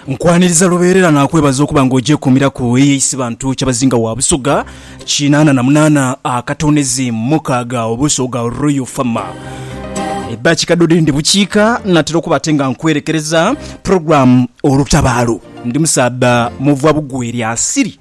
Nkwaniriza lubeerera naakwebaza okuba nga ogyekuumiraku eye Isibantu Kyabazinga wa Busoga kinaana na munaana akatoonezi mukaaga Obusoga Royal Farmer. Ebba kikadodi ndi bukiika natera okuba ate nga nkwerekereza program olutabaalo. Ndi musaadha muvwa bugweri asiri.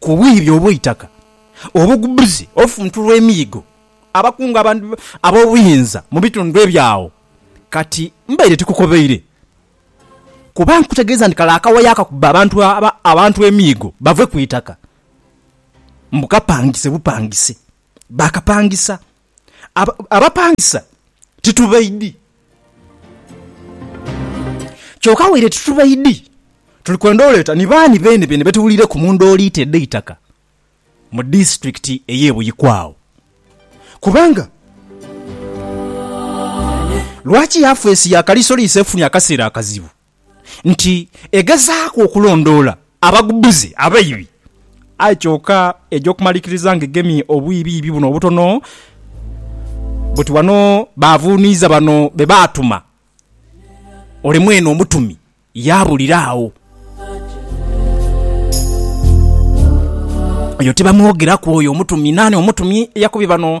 ku bwire obw'eitaka obugubuzi, olufuntu lw'emiigo, abakungu ab'obuyinza mu bitundu ebyo agho. Kati mbaire tikukobeire, kuba nkutegeeza nti kale akawayo akakuba abantu emiigo bave ku itaka, mbu kapangise bupangise. Baakapangisa. Abapangisa titubaidhi. Kyoka waire titubaidhi, tuli kwenda oleeta ni baani beenebeene be tuwulireku mu ndooliito edh'eitaka mu disiturikiti ey'e Buikwe agho. Kubanga lwaki yafeesi ya Kaliisoliiso efunye akaseera akazibu? nti egezaaku okulondoola abagubuzi abaibi, aye kyoka eja okumalikiriza nga egemye obwiibiibi buno obutono buti wano baavuuniiza bano be baatuma, ole mwene omutumi yaabulira agho. Oyo tibamwogeraku oyo omutumi. Naani omutumi eyakubye bano?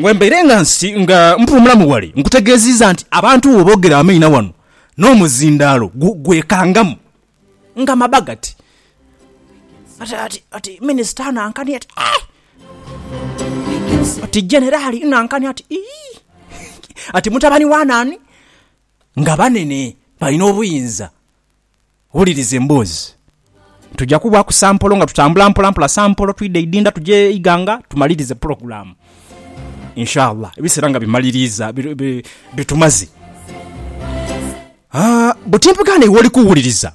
Bwe mbaire nga nsi nga mpuumulamu ghale, nkutegeeziiza nti abantu bwe boogera amaina wano, n'omuzindaalo gwekangamu nga maba gati. Ati minisita anankani ati Aii! Ati Generali nankani ati Iyii! Ati mutabani wa naani? Nga banene, balina obuyinza. Wuliriza emboozi. Tuja kubaaku sampolo nga tutambula mpola mpola, sampolo twidha idinda tuje Iganga tumalirize pulogulaamu. Inshallah ebiseera nga bimaliriiza bitumaze. Haa bwe timpegaana iwe oli kuwuliriza.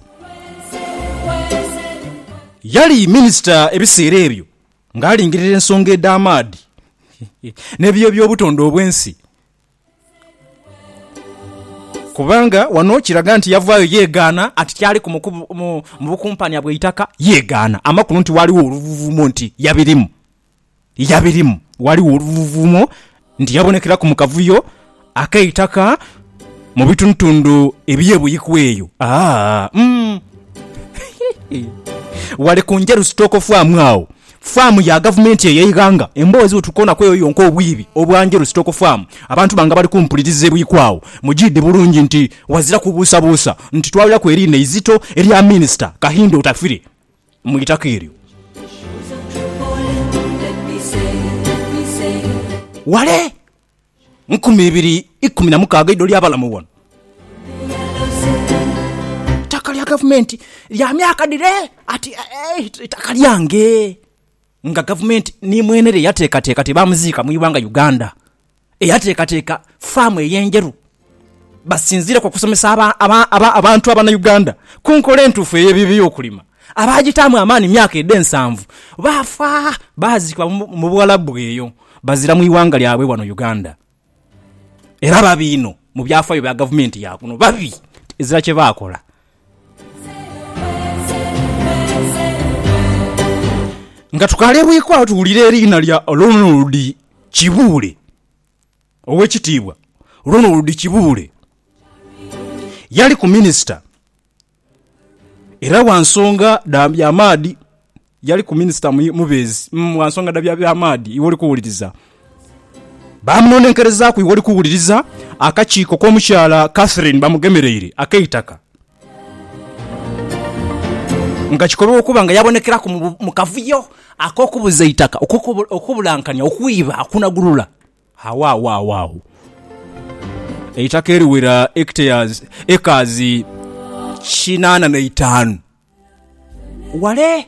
Yali minisita ebiseera ebyo ng'alingirira ensonga edh'amaadhi n'ebiyo by'obutonde obw'ensi. Kubanga wano kiraga nti yavaayo yeegaana ati kyaliku mu bukumpania bw'eitaka. Yeegaana amakulu nti waaliwo oluvuuvuumo nti yabirimu. Yabirimu. Waaliwo oluvuuvuumo nti yabonekeraku mu kavuyo ak'eitaka mu bitundutundu eby'e Buikwe eyo. Aa, umm. Wale ku njeru sitookofu amu agho, Faamu ya gavumenti eyo eighanga emboozi bwetukoona kweyo yonka obwiibi obwanjolo sitoko faamu abantu banga bali kumpuliriza ebuikwa agho mujiidi bulungi nti wazira kubuusabuusa nti twawulaku eriina eizito erya minisita Kahinda Otafire mu itaka eryo. Wale! nkumi ibiri ikumi na mukaaga eidho lya balamu ghano. Eitaka lya gavumenti lya myaka dhire ati eitaka lyange nga gavumenti ni mwene lye yateekateeka ti baamuziika mu ighanga Uganda. Eyateekateeka faamu ey'endheru. basinziire ku kusomesa abantu Abanauganda ku nkola entuufu ey'ebyokulima. Abaagitaamu amaani myaka edhe nsanvu baafa baaziikibwa mu Buwalabu eyo bazira mu ighanga lyabwe wano Uganda. Era babi inho mu byafaayo bya gavumenti ya kuno. Babi ezira kye baakola. Nga tukalebweku agho tuwulire eriina lya Ronald Kibuule. Owekitiibwa Ronald Kibuule yaliku minisita era gha nsonga dha bya maadhi, yaliku minisita mubeezi gha nsonga dha bya maadhi iwe oli kuwuliriza. Baamunonenkerezaaku iwe oli kuwuliriza akakiiko k'omukyala Catherine Bamugemereire ak'eitaka. Nga kikolwa okuba nga yabonekeraku mu kavuyo ak'okubuza eitaka, okubulankania, okwiba, okunagulula, agho agho agho agho eitaka eriwera hectares, acres, kinaana na itaanu ghale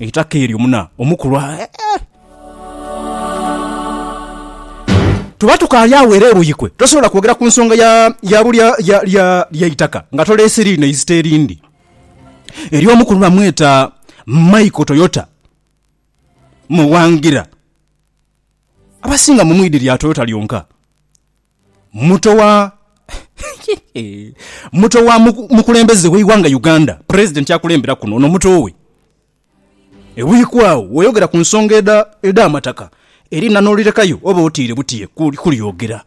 Eitaka eryo muna omukulu aah. Tuba tukaali agho era eruuyikwe tosobola kwogera ku nsonga ya ya bulya ya lya lya itaka nga toleese liino eizita erindi. Eriyo omukulu bamweta Michael Toyota Muwangila. Abasinga mu mu idhi lya Toyota lyonka. Muto wa Muto wa mukulembeze w'eighanga Uganda, Pulezidenti akulembera kuno ono muto we. Ewiiki agho weeyogera ku nsonga edh'amataka erina n'olirekayo oba otiire butiire kulyogera.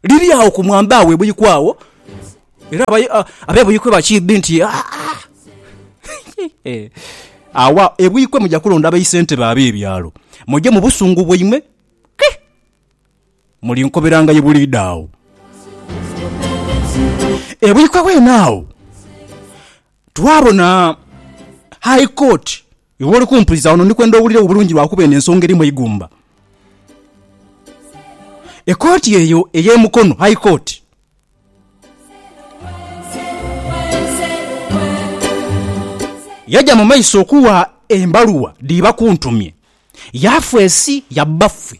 Liri agho ku mwamba we bwiku agho era abe Buikwe bakiidhi nti agho e Buikwe muja kulonda baisentebe ab'ebyalo muje mu busungu bwaimwe. Mulinkoberangayo buliidho agho. Ebuikwa bwene agho, twabona High Court. Iwe oli kumpuliza wano ndi kwenda owuliregho bulungi lwa kuba eno ensonga erimu eigumba. Ekooti eyo ey'e Mukono, High Court, yaja mu maiso okuwa embaluwa dhi bakuntumye, yaafeesi ya bbaffe.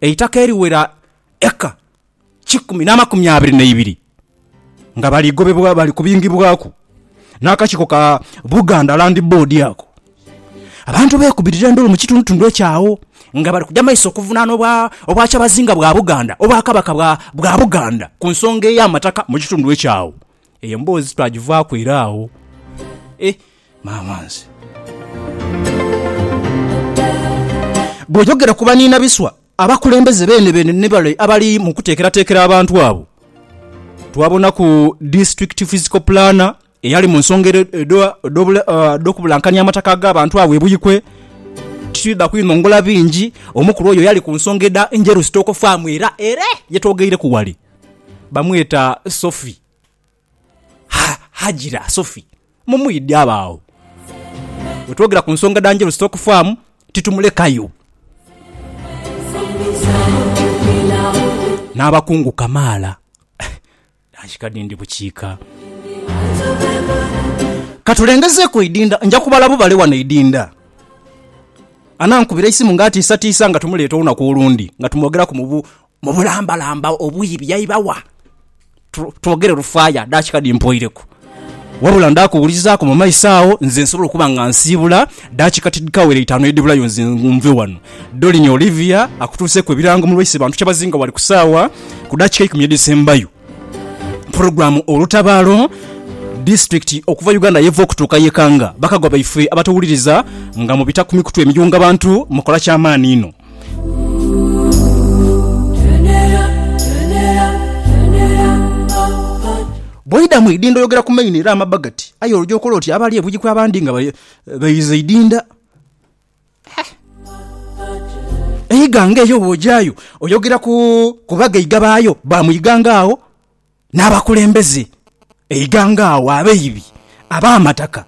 eitaka eriwera eka kikumi n'amakumi abiri n'eibiri nga bali gobebwa bali kubingibwaku n'akakiiko ka Buganda Land Board ako. Abantu beekubirira endulu mu kitundutundu ekyo agho nga bali kuja mu maiso okuvunaana Obwakyabazinga bwa Buganda, Obwakabaka bwa Buganda ku nsonga ey'amataka mu kitundu ekyo agho. Eyo emboozi twagivaaku ira agho. E! Maama nze! Bw'oyogera ku baniina biswa, abakulembeze beene beene ni bale abali mu kuteekerateekera abantu abo. Twabonaku District Physical Planner eyali mu nsonga edh'okubulankania amataka ag'abantu agho e Buikwe. Titwidha kwinongola bingi, omukulu oyo yali ku nsonga edha Njeru Stock Farm ira ere ye twogeireku wale. Bamweta Sophie. Ha, Hajira Sophie. Mumwidhe abe agho. Bwetwogera ku nsonga dha Njeru Stock Farm, titumulekayo. N'abakungu kamaala. Nansika dhindi bukiika. Katulengezeeku eidinda, nja kubala bubale wano eidinda. Anankubira eisimu nga atiisatiisa nga tumuleeta olunaku olundi nga tumwogeraku mu bu, Mu bulambalamba obuyi byaiba wa? Twogere lufaaya, daakika dhimpoireku. Wabula ndaakuwulizaaku mu maiso agho, nze nsobola okuba nga nsiibula daakika tidhikawera itaanu edhibulayo nze nve ghano. Dolini Olivia akutuuseeku ebirango mu lwaise bantu kyabazinga ghale ku saawa ku daakika eikumi edhisembayo. Pulogulaamu Olutabaalo, Disitulikiti okuva Uganda yeva okutuuka yekanga. Bakagwa baife abatuwuliriza nga mubita ku mikutu emiyunga bantu mukola kyamaani inho. Bw'oidha mu idinda oyogera ku main era amabba gati, aye olwo gy'okola oti abali e Buikwe abandi nga baidhiza eidinda. Eighanga eyo bw'ogyayo oyogera ku bagaiga baayo ba mu ighanga agho. n'abakulembeze eighanga agho, abaibi, ab'amataka.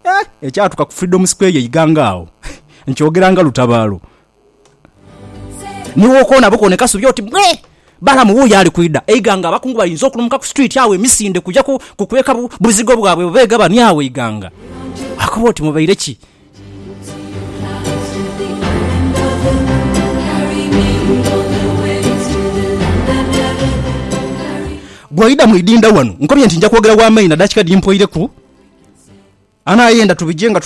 Eh, ekyatuka ku Freedom Square eighanga agho nkyogera nga lutabaalo. Ni w'okoona bukoone Kasubi oti bwe! Balamu wuuyo ali kwidha. Eighanga abakungu balinze okulumuka ku street agho emisinde kuja kukweka buzigo bwabwe bwe beegabania agho eighanga. Akoba oti mubaire ki? Bw'oidha mu idhindha wano, nkobye nti nja kwogera wa maina daakika dhiri mpoireku. Anaayenda tubije nga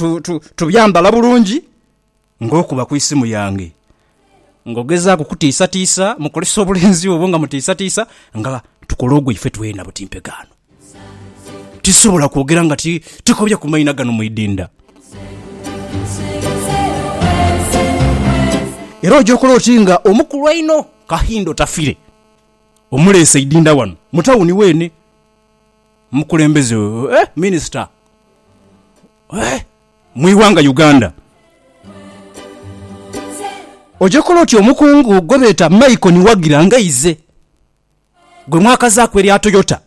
tubyambala bulungi ng'okuba ku isimu yange. ng'ogezaaku kutiisatiisa, mukozesa obulenzi obwo nga mutiisatiisa nga tukola ogwaife twena buti mpegaano. Tisobola kwogera nga ti, tikobya ku maina gano mu idinda. Era oja okola oti nga omukulu einho Kahinda Otafire omuleese idinda wano mu tawuni weene. Mukulembeze, eh, minisita, eh! mu ighanga Uganda. Oja kola otya omukungu gwe beeta Michael Niwagira nga ize gwe mwakazaaku erya Toyota,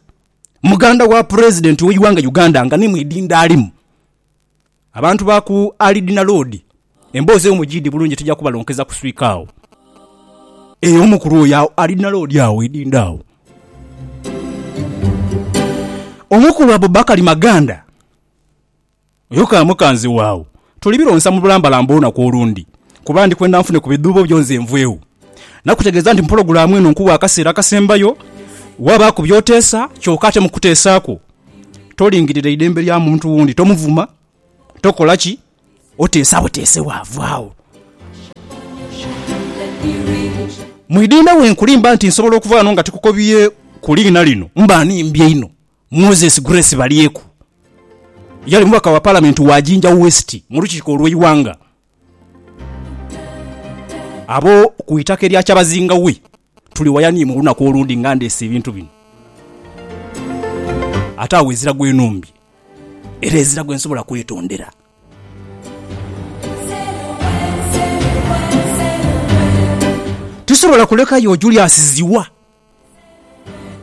muganda wa Pulezidenti we ighanga Uganda nga ni mwidindho alimu. Abantu ba ku Alidina Loodi emboozi eyo mujiidi bulungi tija kubalonkeza ku swiika agho. Eeh omukulu oyo agho Alidina Loodi agho eidindho agho. Omukulu Abubakari Maganda Oyo ka mukaanzi waagho tolibironsa mu bulambalamba olunaku olundi, kuba ndi kwenda nfune ku bidhuubo byo nze nvwegho. Nakutegeeza nti mu pulogulaamu eno nkuwa akaseera akasembayo, wabaaku by'oteesa, kyoka ate mu kuteesa kwo tolingirira idembe lya muntu wundi, tomuvuma, tokola ki, oteesa buteese waavwagho. Mwidinde bwe nkulimba nti nsobola okuva ghano nga tikukobye ku liina lino, mba nimbye inho. Moses Grace Balyeku yali mubaka wa Palamenti wa Jinja West mu lukiiko olw'eighanga abo ku itaka erya Kyabazinga we tuli waya ni mu lunaku olundi nga ndeese ebintu bino ate agho ezira gwenumbye era ezira gwensobola kwetondera. Tisobola kulekayo Julius Zziwa.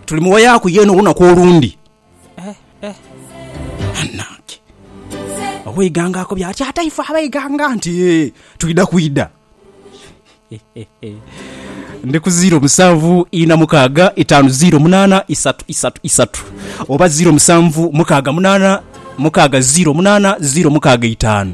Tuli mu waya ku yena olunaku olundi. Banange! Ow'eighanga akobye ati, Ate ife ab'eighanga nti twidha kwidha. Ndi ku ziiro musanvu ina mukaaga itaanu ziiro munaana isatu isatu isatu oba ziiro musanvu mukaaga munaana mukaaga ziiro munaana ziiro mukaaga itaanu.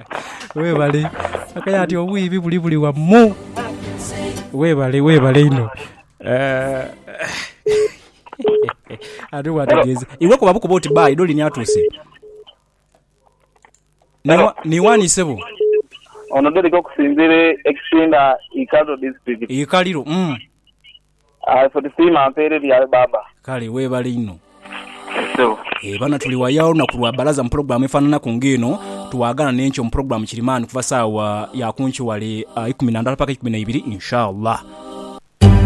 Webale akaye ati obwibi buli buli wamu webale webale inho ati bwategeza iwe kuba bukuba oti bye idho lini atuse niwani sebo Ono Derrick okusinzira ekisinda Ikaliro district. Ikaliro uhmm Aye ffe tusiima mpeere bya baaba. Kale webale inho. Yes sebo. Eeh bana tuli waya olunaku lwa balaza mu program efananaku nga eno twagana nenkyo mu program kirimani kuva sawa ya kunkyo wale ikumi nandala paka ikumi naibiri inshallah.